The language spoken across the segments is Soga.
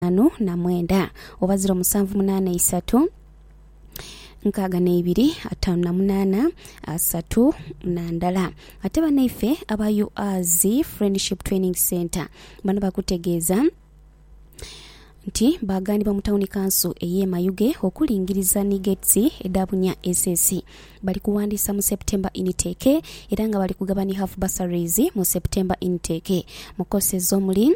itaanu na mwenda oba ziro musanvu munaana isatu nkaaga neibiri ataanu na munaana asatu na ndala. Ate banaife aba UAZ Friendship Training Centre bano bakutegeeza nti baaganibwa mu tawuni kanso ey'e Mayuge okulingiriza ni gates edha bunya SS. Bali kuwandiisa mu September intake era nga bali kugaba ni half bursaries mu September intake mu courses omuli.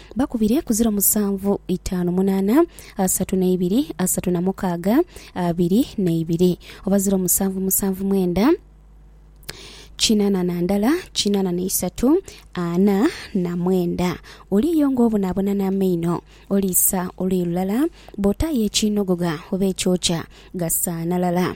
Bakubire ku ziro musanvu, itaanu munaana, asatu n'eibiri, asatu na mukaaga, abiri n'eibiri, oba ziro musanvu musanvu mwenda, kinaana na ndala, kinaana na isatu, ana na mwenda. Oliiyo ng'obonaabona n'amaino, oliisa oluyi lulala, bw'otaayo ekiinogogha oba ekyokya, gasaanalala.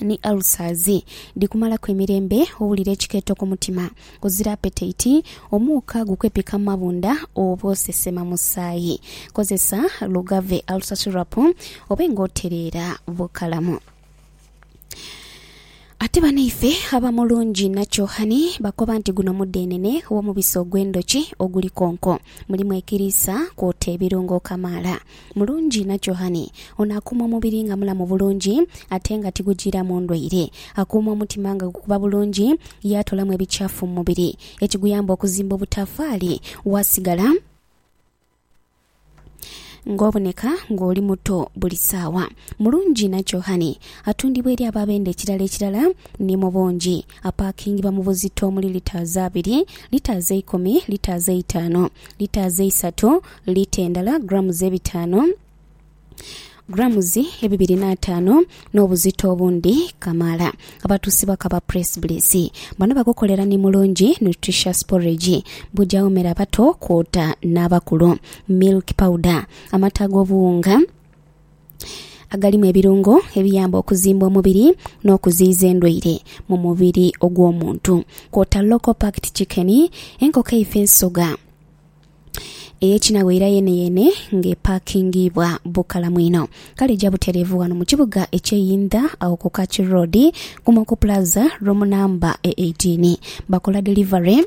ni ulcers dhikumalaku emirembe, owulira ekikeeto ku mutima, ozira apetaiti, omuuka gukwepika mu mabunda oba osesema musaayi. Kozesa Lugave Ulcer Syrup obe nga otereera bukalamu. Ate banaife aba Mulungi Nakyohani bakoba nti guno mudhenene w'omubisi ogw'endhoki oguli konko. Mulimu ekiriisa kwota ebirungo kamaala. Mulungi na kyohani. Ono akuuma omubiri nga mulamu bulungi ate nga tigujiiramu ndwaire. Akuuma omutima nga gukuba bulungi yaatoolamu ebikyafu mu mubiri ekiguyamba okuzimba obutafaali waasigala ng'oboneka ng'oli muto buli saawa. Mulungi na kyohani. Atundibwa eri abo abenda ekirala ekirala ni mu bungi. Apaakingibwa mu buzito omuli litaazi abiri, litaazi eikumi, litaazi eitaanu, litaazi eisatu, liita endala, grammes ebitaanu, grammes ebibiri n'ataanu, n'obuzito obundi kamaala. Abatuusibwa ku aba Presbylis bano bagukolera ni mulungi, nutritious porridge, bugyawo mere abato kwota n'abakulu, milk powder, amata ag'obuwunga, agalimu ebirungo ebiyamba okuzimba omubiri n'okuziyiza endwaire mu mubiri ogw'omuntu kwota local packed chicken, enkoko eife ensoga ey'ekinagho era yeeneyeene ng'epakingiibwa bukalamu inho. Kale ja butereevu ghano mu kibuga eky'e Yindha agho ku Kaki Road, Kumoko Plaza, room number e eighteen. Bakola delivery.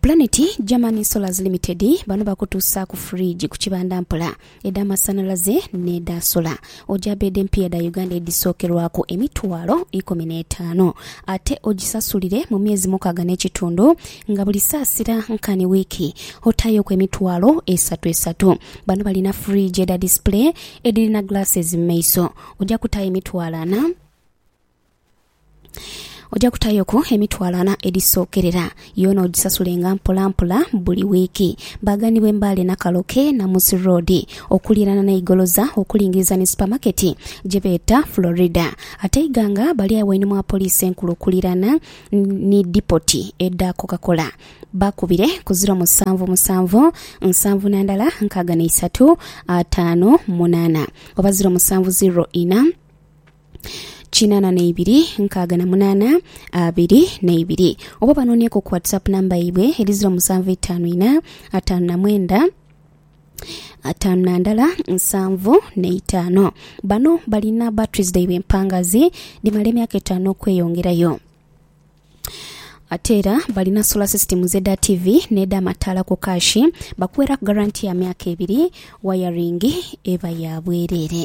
Planet German Solars Limited bano bakutuusaaku fridge ku kibanda mpola, edha masanhalaze n'edha sola. Oja bed empya dha Uganda edhisookerwaku emitwalo ikumi n'etaanu ate ogisasulire mu myezi mukaaga n'ekitundu nga buli saasira nkani wiiki otaayoku emitwalo esatu esatu. Bano balina fridge edha display edhirina glasses mu maiso. Oja kutaayo emitwalo ana. Oja kutayoku emitwalo ana edhisookerera, yoona ogisasulenga mpolampola buli wiiki. Baaganibwe Mbale Nakaloke, Namusi Road, okuliirana n'e Igoloza okulingiriza ni supamaketi gye beeta Florida. Ate Iganga bali agho einhuma wa Poliisi Enkulu okuliirana ni dipoti edha Coca-Cola. Bakubire ku ziro musanvu musanvu nsanvu na ndala nkaaga na isatu ataanu munaana oba ziro musanvu ziro ina. kinana neibiri nkaaga na munana abiri neibiri oba banonieku ku whatsapp namba yaibwe eri ziro musanvu itaanu ina ataanu na mwenda ataanu na ndala nsanvu neitaano bano balina batteries dhaibwe empangazi dhimala emyaka etaano okweyongerayo ate era balina solar system z'edha TV n'edha mataala ku kaashi bakuweeraku garanti ya myaka ebiri wayaringi eba ya bwereere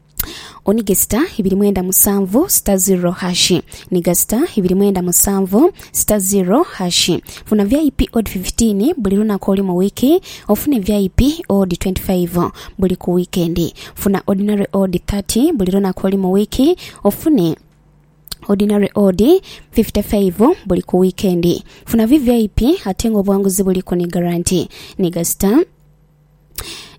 O ni ghesita ibiri mwenda musanvu sita ziro hashi ni ghasita ibiri mwenda musanvu sita ziro hashi Funa vip odi fifitiini buli lunaku olu mu wiiki ofune vip odi twenti faivu buli ku wiikendi Funa odinare odi thati buli lunaku olu mu wiiki ofune odinare odi fifite faivu buli ku wiikendi Funa vvip ate nga obuwanguzi buliku ni garanti ni ghasita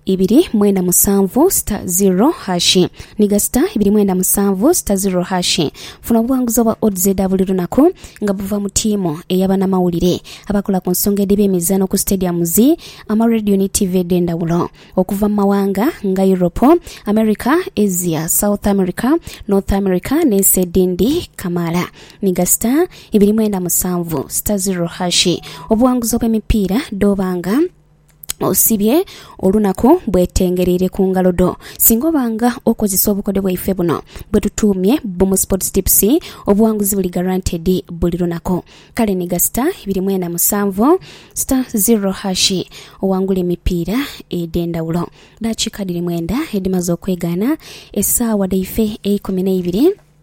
ibiri mwenda musanvu sita ziro hashi ni gasita ibiri mwenda musanvu sita ziro hashi. Funa obuwanguzi obwa odds edha buli lunaku nga buva mu tiimu eya banamawulire abakola ku nsonga edheba emizaano ku stadiums, ama radio ni tiivi edhendawulo okuva mu mawanga nga Europe, America, Asia, South America, North America ne nsi edindi kamaala. Ni gasita ibiri mwenda musanvu sita ziro hashi obuwanguzi obwe mipiira dhoba nga. osibye olunaku bwetengereire ku ngalo dho. Singa oba nga okozesa obukodyo bwaife buno bwetutuumye Boom Sports Tips, obuwanguzi buli guaranteed buli lunaku. Kale nhiga star ibiri mwena musanvu star zero hash owangule emipiira edhendhawulo. Dakiika dhiri mwenda edhimaze okwegaana esaawa dhaife eikumi neibiri.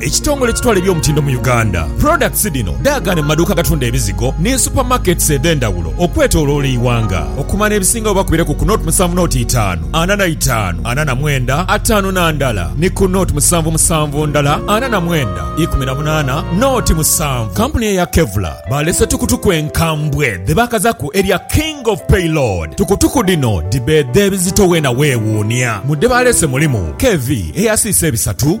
Ekitongole ekitwala eby'omutindo mu Uganda, products dhino dhaagaana mu maduuka agatunda ebizigo ni super markets edhendhawulo okwetoloola eighanga. Okumanya ebisingawo oba kubire ku ku nought musanvu nought itaanu ana na itaanu ana na mwenda ataanu na ndala ni ku nought musanvu musanvu ndala ana na mwenda ikumi na munaana nought musanvu. Kampuni eya Kevlar baalese tukutuku enkambwe dhebaakazaku erya King of Payload. Tukutuku dhino dhibeedha ebizito weena wewuunia. Mu dhebaalese mulimu, KV eyasiisa ebisatu,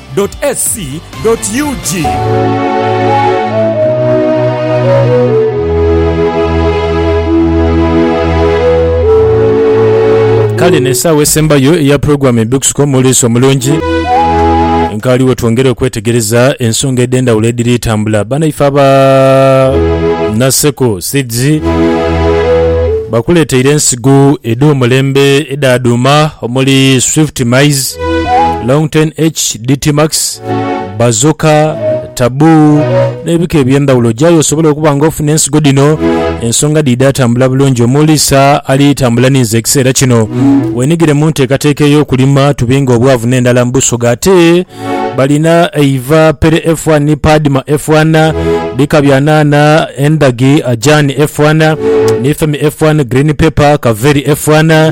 www.ac.ug. Kale eno esaawa esembayo eya program Ebikusuka Omulisa Omulungi nkaali wetwongera okwetegereza ensonga edhendhawulo edhiri tambula. Banaife aba Naseko Seeds bakuleteire ensigo edhomulembe edha dhuuma omuli Swift Maize, Longten H, DT Max, Bazooka, Taboo n'ebika eby'endhawulo. Gyayo osobole okuba nga ofuna ensigo dhino ensonga dhiidha atambula bulungi omuli Sir Ali Tambula Ninze ekiseera kino. Weenhigire mu nteekateeka ey'okulima tubinge obwavu n'endala mu Busoga. Ate balina eiva, Pere F1, Padma F1, bika bya nhanha, endhagi, Ajani F1, Nifemi F1, Green Pepper, Kaveri F1,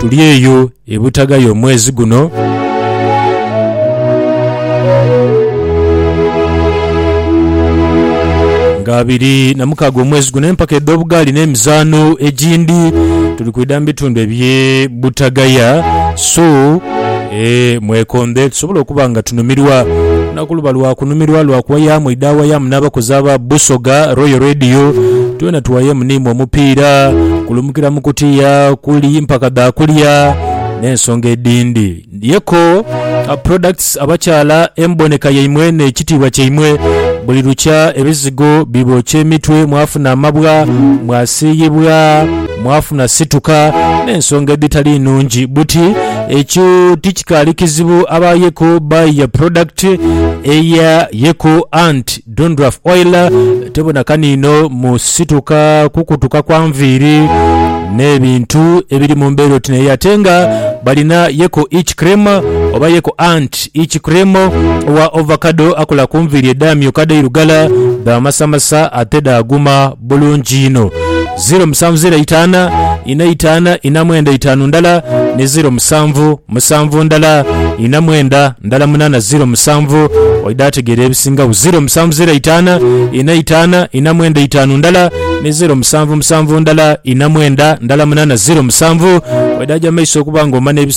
Tuli eyo e Butagaya omwezi guno. Nga abiri na mukaaga omwezi guno empaka edh'obugaali n'emizaano egindi tuli kwidha mu bitundu eby'e Butagaya. So... Ee, mwekondhe tusobole okuba nga tunumirwa na ku luba lwa kunumirwa lwa kuwayaamu idhawayaamu n'abakozi aba Busoga Royal Radio. Twena tuwayeemu niimwe omupiira kulumukira mu kutiya kuli mpaka dha kulya n'ensonga edhindi. Yeko Products abakyala emboneka yaimwe n'ekitiibwa kyaimwe buli lukya ebizigo bibookya emitwe mwafuna amabwa mwasiiyibwa. mwafuna situka n'ensonga edhitali nnungi. Buti ekyo tikikaali kizibu aba Yeko by ya product eya Yeko Ant Dandruff Oil tebona kaniino mu situka, kukutuka kwa nviiri n'ebintu ebiri mu mbeera oti n'eyo. Ate nga balina Yeko Itch Cream oba Yeko Ant Itch Cream owa Ovacado akola ku nviiri edhaamyuka dhairugala, dhaamasamasa ate dhaaguma. bulungi inho. Ziiro musanvu ziiro eitaana ina eitaana ina mwenda eitaanu ndala ni ziiro musanvu musanvu ndala ina mwenda ndala munaana ziiro musanvu oidha ategeera ebisingagho. Ziiro musanvu ziiro eitaana ina eitaana ina mwenda eitaanu ndala ni ziiro musanvu musanvu ndala ina mwenda ndala munaana ziiro musanvu oidha aja mu maiso okuba nga omana ebisingagho.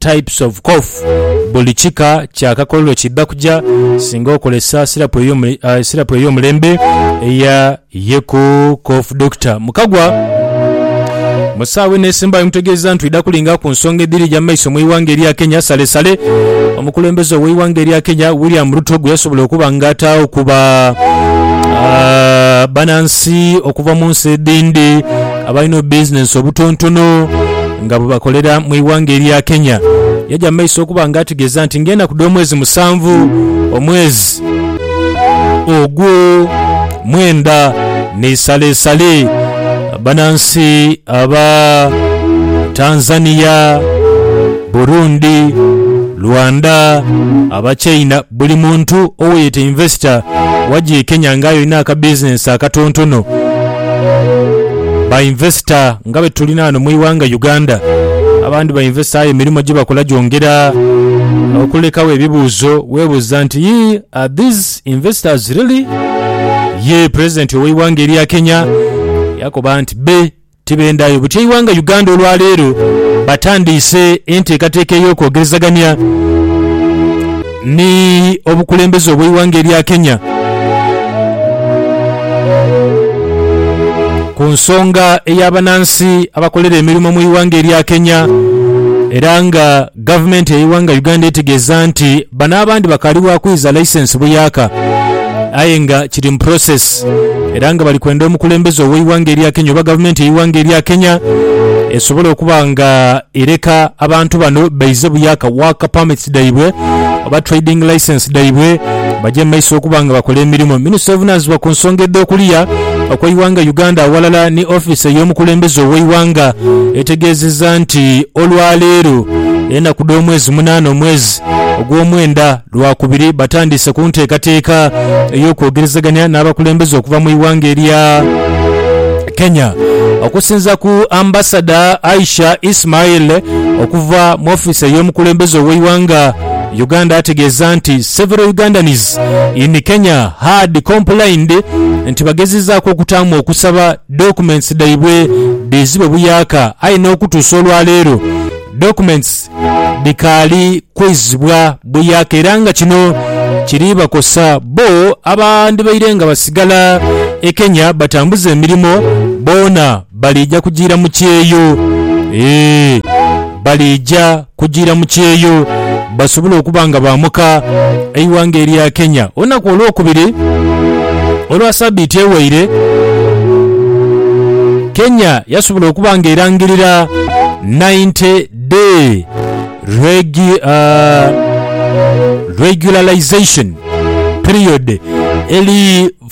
types of cough. Buli kika kya kakololo kiidha kuja singa okozesa sirapu ey'omulembe eya Yeku Cough Doctor. Mukagwa mu saawa eno esembayo mutegeeza nti twidha kulinga ku nsonga edhiri eja mu maiso mu ighanga erya Kenya. Salesale omukulembeze ow'eighanga erya Kenya William Ruto gwe yasobola okuba nga ataagho ku ba banansi okuva mu nsi edhindi, abalina obubizinensi obutontono nga bwebakolera mu ighanga erya Kenya. Yaja mu maiso okuba nga ategeeza nti ng'enaku dh'omwezi musanvu omwezi ogwo mwenda n'eisalesale banansi aba Tanzania, Burundi, Rwanda, Abachina, Buli muntu oweyeeta invesita waji e Kenya nga aye olina aka bizinensi akatontono. Ba invesita nga betulina ghano mu ighanga Uganda abandi ba invesita aye emirimo gyebakola gyongera okulekagho ebibuuzo webuuza nti yii are these investors really? Yee pulezidenti oweighanga erya Kenya yakoba nti be Tibendhayo butya eighanga Uganda olwaleero batandiise enteekateeka ey'okwogerezagania ni obukulembeze obw'eighanga erya Kenya ku nsonga ey'abanansi abakolera emirimo mu ighanga erya Kenya era nga Gavumenti ey'eighanga Uganda etegeeza nti bano abandi bakaali bwa kwiza laisensi buyaaka aye nga kiri mu process era nga bali kwenda omukulembeze ow'eighanga erya Kenya oba gavumenti ey'eighanga erya Kenya esobole okuba nga ereka abantu bano baize buyaaka work permits dhaibwe oba trading license dhaibwe bagye mu maiso okuba nga bakola emirimo. Minisita ovunaanyizibwa ku nsonga edh'okuliya, okw'eighanga Uganda aghalala ni ofiisi ey'omukulembeze ow'eighanga etegeezezza nti olwaleero enaku dh'omwezi munaana omwezi ogw'omwenda lwakubiri batandiise ku nteekateeka ey'okwogerezeganya n'abakulembeze okuva mu ighanga erya Kenya. Okusinza ku Ambasada Aisha Ismail okuva mu ofiisi ey'omukulembeze ow'eighanga Uganda ategeeza nti several Ugandans in Kenya had complained nti bagezezaaku okutaamu okusaba documents dhaibwe dhiizibwe buyaaka aye n'okutuusa olwaleero documents dhikaali kwizibwa buyaaka era nga kino kiri bakosa bbo abandibaire nga basigala e Kenya batambuze emirimo boona Baliija kujiira mu kyeyo. Ee, baliija kujiira mu kyeyo basobole okuba nga baamuka eighanga erya Kenya olunaku olwokubiri olwa sabiiti eweire. Kenya yasobola okuba nga erangirira 90 day regu, uh, regularisation period eli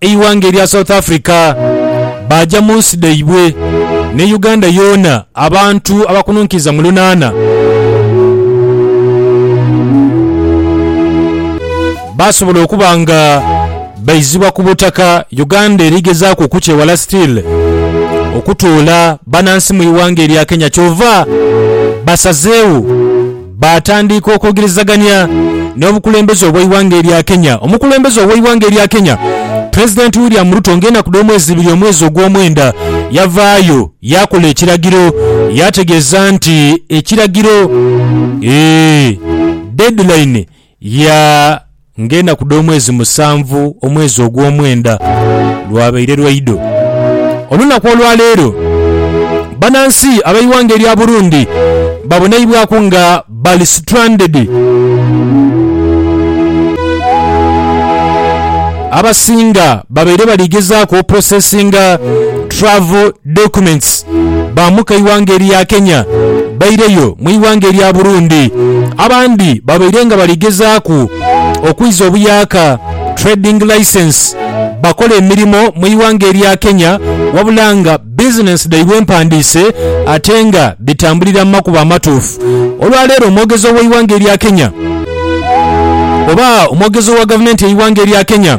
Eighanga erya South Africa baaja mu nsi dhaibwe, ne Uganda yoona abantu abakununkiriza mu lunaana baasobola okuba nga baizibwa ku butaka Uganda eri gezaaku okukyewala still okutoola banansi mu ighanga erya Kenya kyova basazeewo Baatandiika okwogerezagania n'obukulembeze obw'eighanga erya Kenya. Omukulembeze ow'eighanga erya Kenya, Pulezidenti William Ruto nga enaku dh'omwezi ibiri omwezi ogw'omwenda yavaayo yaakola ekiragiro yaategeeza nti ekiragiro, ee, deadline, Ya ng'enaku dh'omwezi musanvu omwezi ogw'omwenda lwabaire lwaidho. Olunaku olwa leero banansi ab'eighanga erya Burundi babonaibwaku nga bali stranded. Abasinga babaire bali gezaaku oprocessinga travel documents. baamuka eighanga erya Kenya baireyo mu ighanga erya Burundi. Abandi babaire nga bali gezaaku okwiza obuyaaka, trading licence, bakole emirimo mu ighanga erya Kenya wabula nga bizinensi dhaibwe mpandiise ate nga dhitambulira mu makubo amatuufu. Olwa leero omwogezi ow'eighanga erya Kenya oba omwogezi owa gavumenti y'eighanga erya Kenya,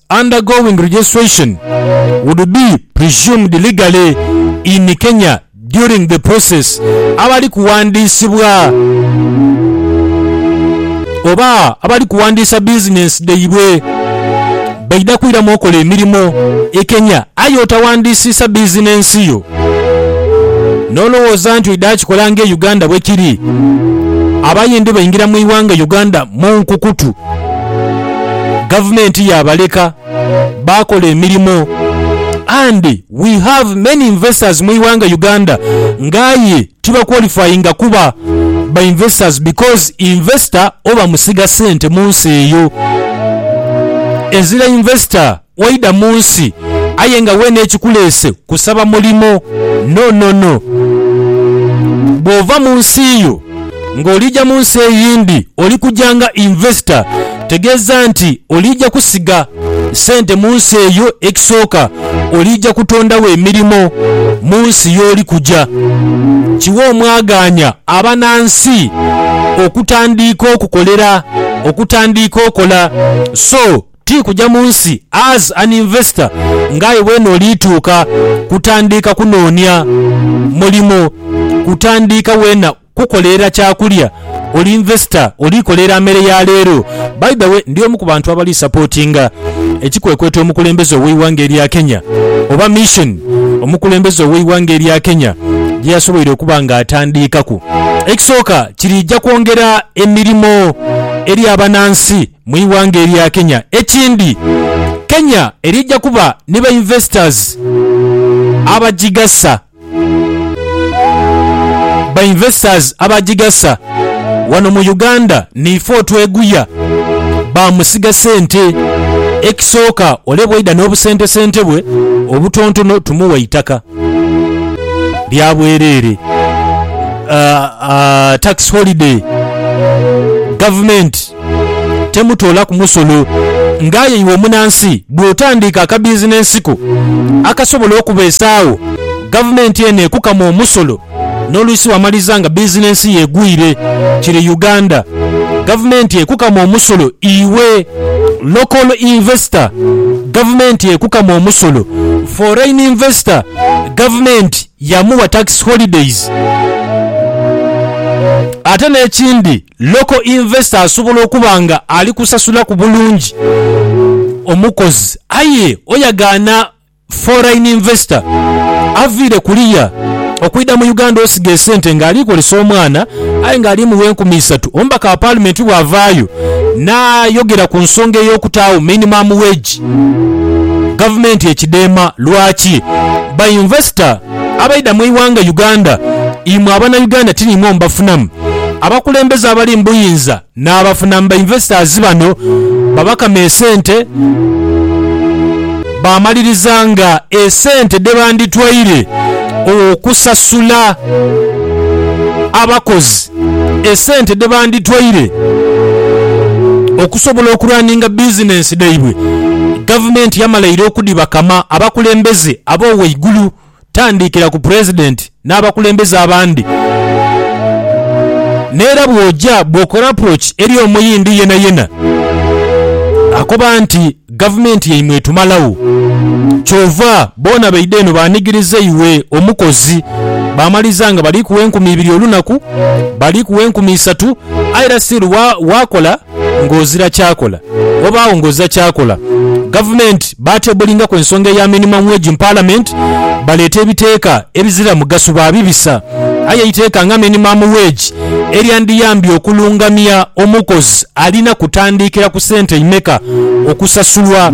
undergoing registration would be presumed legally in Kenya during the process abali kuwandiisibwa oba abali kuwandiisa bizinensi dhaibwe baidha kwiramu okola emirimo e Kenya aye otawandiisiisa bizinensi yo n'olowooza nti oidha kikola nga e Uganda bwekiri abayindi baingira mu ighanga Uganda mu nkukutu. Gavumenti yabaleka baakola emirimo and we have many investors mu ighanga Uganda nga aye tibaqualifyinga kuba ba investors because investor oba musiga sente munsi eyo. Ezira investor Waidha mu nsi aye nga weene ekikuleese kusaba mulimo? No, no, no. Bw'ova mu nsi yo ng'oliija mu nsi eyindi oli kuja nga investor, tegeeza nti oliija kusiga sente mu nsi eyo. Ekisooka oliija kutondagho emirimo mu nsi y'oli kuja. Kiwe omwagaanya abanansi okutandiika okukolera, okutandiika okola. So, Ti kuja mu nsi as an investor nga aye weene oliituuka kutandiika kunoonia mulimo, kutandiika weena kukolerera kyakulya, oli investor oliikolerera mere ya leero. By the way, ndi omu ku bantu abali supportinga ekikwekweto omukulembeze ow'eighanga erya Kenya oba mission omukulembeze ow'eighanga erya Kenya gyeyasoboire okuba nga atandiikaku. Ekisooka kiriija kwongera emirimo eri abanansi. mu ighanga erya Kenya. Ekindi, Kenya erija kuba ni ba investors abagigasa ba investors abagigasa wano mu Uganda niife otweguya ba musiga sente. Ekisooka ole bwaidha n'obusentesente bwe obutontono tumuwa eitaka lya bwereere, tax holiday, government. temutoolaku musolo. Nga aye iwe omunansi bw'otandiika akabizinensi ko akasobola okubeesaagho, gavumenti eno ekukama omusolo n'oluisi wamaliza nga bizinensi yo egwire. Kiri Uganda, gavumenti ekukama omusolo iwe local investor, gavumenti ekukama omusolo foreign investor, gavumenti yamuwa tax holidays. Ate n'ekindi. Local investor asobola okuba nga ali kusasulaku bulungi omukozi aye oyagaana foreign investor avaire kuliya okwidha mu Uganda osiga esente nga ali kozesa omwana aye nga ali mugha enkumi isatu. Omubaka wa parliament bwavaayo nayogera ku nsonga eyokutaagho minimum wage gavumenti ekidheema lwaki ba investor. Abaidha mwighanga Uganda imwe abana Uganda tinimwo mubafunamu abakulembeze abali mubuyinza nabafunamu ba investors bano babakama esente bamaliriza nga esente dhebanditwaire okusasula abakozi esente dhe banditwaire okusobola okuraninga bizinensi dhaibwe, Gavumenti yamalaire okudhibakama abakulembeze ab'owaigulu tandiikira ku Pulezidenti n'abakulembeze abandi. N'era bw'oja bw'okola approach eri Omuyindi yenayena, akoba nti. Gavumenti yaimwe etumalagho. Kyova boona baidha eno baanigiriza iwe omukozi. Baamaliza nga bali kuwa enkumi ibiri olunaku, bali kuwa enkumi isatu, aye era still waakola ng'ozira kyakola, wabaagho ng'ozira kyakola. Gavumenti baatebulingaku ensonga eya minimum wage mu Palamenti, baleeta ebiteeka ebizira mugaso baabibisa. Aye eiteeka nga minimum wage eryandiyambye okulungamya omukozi alina kutandiikira ku sente imeka okusasulwa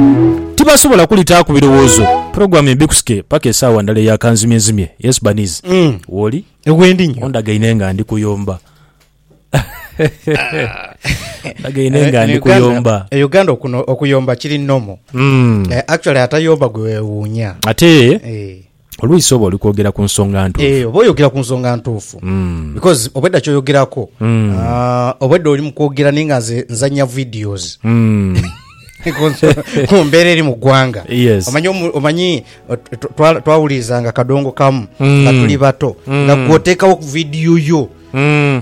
tibasobola kulitaaku birowoozo. Program ye bikusike paka esaawa ndala eya kanzimyezimye. Yes Baniz, wooli? Ondagaine nga ndi kuyomba. Ondagaine nga ndi kuyomba. E Uganda okuno okuyomba kiri normal. Actually atayomba gwe wewuunya. Ate. Olwisi oba oli kwogera ku nsonga ntuufu. Eeh oba oyogera ku nsonga ntuufu because obwedda ky'oyogerako aah obwedda oli mu kwogera naye nga nze nzannya videos ku nso- ku mbeera eri mu ggwanga. Yes. Omanyi omu- omanyi ot- twa- twa- twawulirizanga kadongo kamu nga tuli bato nga gwe oteekawo vidiyo yo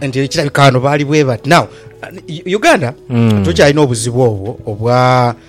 nti ekirabika wano baali bwe bati now uh, Uganda tukyalina obuzibu obwo obwa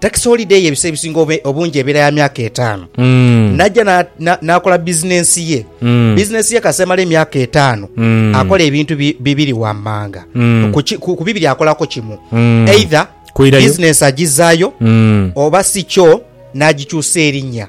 Takisi holide ye ebiseera ebisinga obe- obungi ebeera ya myaka etaano. Mm. N'ajja na- na- n'akola bizinensi ye. Mm. Bizinensi ye kasita emala emyaka etaano, Mm. akola ebintu bi- bibiri wammanga. Mm. Ku ki- Ku ku bibiri akolako kimu. Mm. Either Kwirayo. bizinensi agizaayo Mm. oba si kyo n'agikyusa erinnya.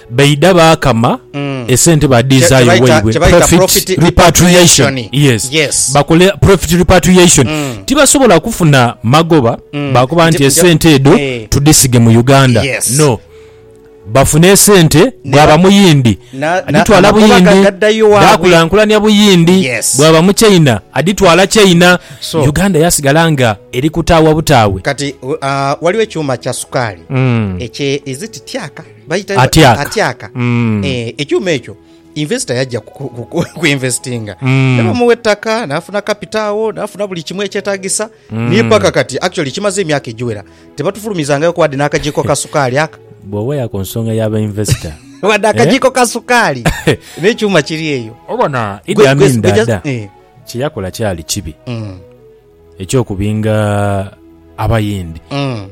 Baidha baakama esente badhiizaayo waibwe, profit repatriation, bakole profit repatriation. Tibasobola kufuna magoba baakoba nti esente edho tudhisige mu Uganda, no. Bafune esente, bwaba Muyindi adhitwala Buyindi, dhaakulankulania Buyindi, bwaba Muchaina adhitwala Chaina, Uganda yaasigala nga eri kutaawa butaawe. Kati ghaligho ekyuma kya sukaali ekye, is it tyaka? Atyaka. Ekyuma ekyo investor yaja ku investinga nebamuwa ettaka nafuna capital agho nafuna buli kimu ekyetagisa ni paka kati actually kimaze emyaka egiwera tebatufulumizangayo ku wadde n'akagiiko ka sukaali aka. Bwoweya ku nsonga ya ba investor. Wadde akagiiko ka sukaali n'ekyuma kiri eyo. Obona Idi Amin Dada kyeyakola kyali kibi. eky'okubinga Abayindi,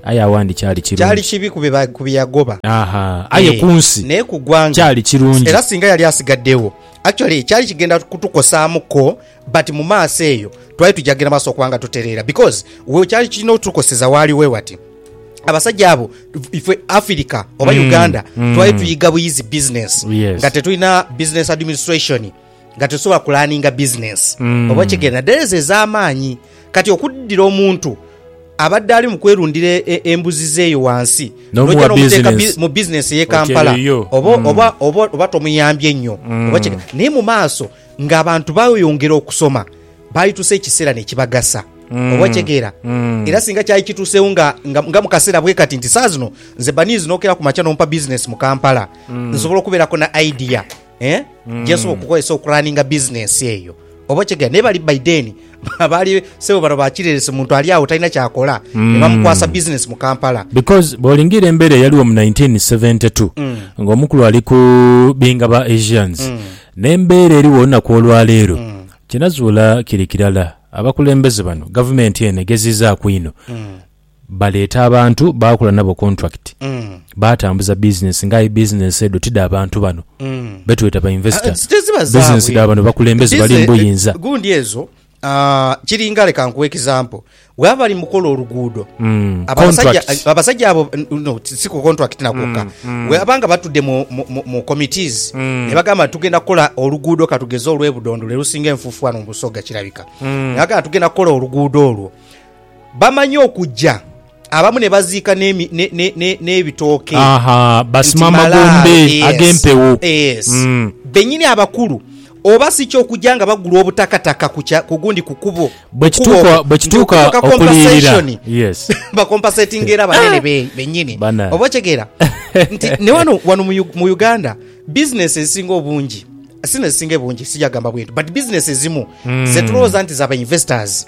aye awandi kyali kirungi. Kyali kibi ku bye yagoba. Aha, aye ku nsi. Naye ku gwanga. Kyali kirungi. Era singa yali asigaddewo, actually kyali kigenda kutukosaamu ko, but mu maaso eyo twali tuja kugenda maaso okuba nga tutereera because we kyali kirina otukoseza waali wewati. Abasajja abo ife Afirika oba Uganda twali tuyiga buyizi business nga tetulina business administration. nga tesobola kulaninga bizinensi mm. oba okigenda dhereza ez'amaanyi kati okuddira omuntu abadde ali mu kwerundira e, e, embuzi zeeyo wansi noja nomuteeka mu bizinensi ey'e kampala mm. oba tomuyambye nnyo mm. naye mu maaso ng'abantu bayongera okusoma balitusa ekiseera nekibagasa Mm. oba kyegeera mm. era singa kyali kituuseewo nga, nga, nga mu kaseera bwe kati nti saa zino nze baniizi nokera ku makya nompa bizinesi mu kampala mm. nsobola okubeerako na idea eh, Mm. gyesobola okukozesa okuraninga bizinensi eyo oba okitegera naye bali by then baali sebo bano bakireresi muntu ali awo talina kyakola Mm. ne bamukwasa bizinensi mu kampala because bwolingira embeera eyaliwo mu 1972 Mm. ng'omukulu ali ku binga ba asians Mm. n'embeera eriwo olunaku olwaleero Mm. kinazuula kiri kirala abakulembeze bano gavumenti eno egeziizaaku ino Mm. Baleeta abantu baakola nabo kontulakiti, baatambuza bizinensi nga aye bizinensi edho ti dha bantu bano be tweta bainvesita. Bizinensi dha bano bakulembeze bali mu buyinza. Gundi ezo kiringa, leka nkuwe ekizampo, bwebaba bali mu kukola oluguudo, abasajja abo, no si ku kontulakiti na kwokka, bwebaba nga batudde mu komitiizi ne bagamba nti tugenda kukola oluguudo ka tugeze olw'e Budondo lwe lusinga enfuufu wano mu Busoga kirabika, ne bagamba nti tugenda kukola oluguudo olwo. Bamanya okugya abamu ne baziika n'ebitooke nti malaalo. Benyini abakulu oba si kyo okugya nga bagula obutakataka ku gundi ku kubo okwo nti okutuuka kompaseshoni bakompasetinge era banene benyini. Oba okitegeera? Nti ne wano mu Uganda bizinensi ezisinga obungi si n'ezisinga ebungi sija gamba bwentyo but bizinensi ezimu ze tulowooza nti za ba investors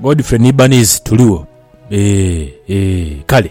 Godfrey ni Banizi tuligho ee ee kale.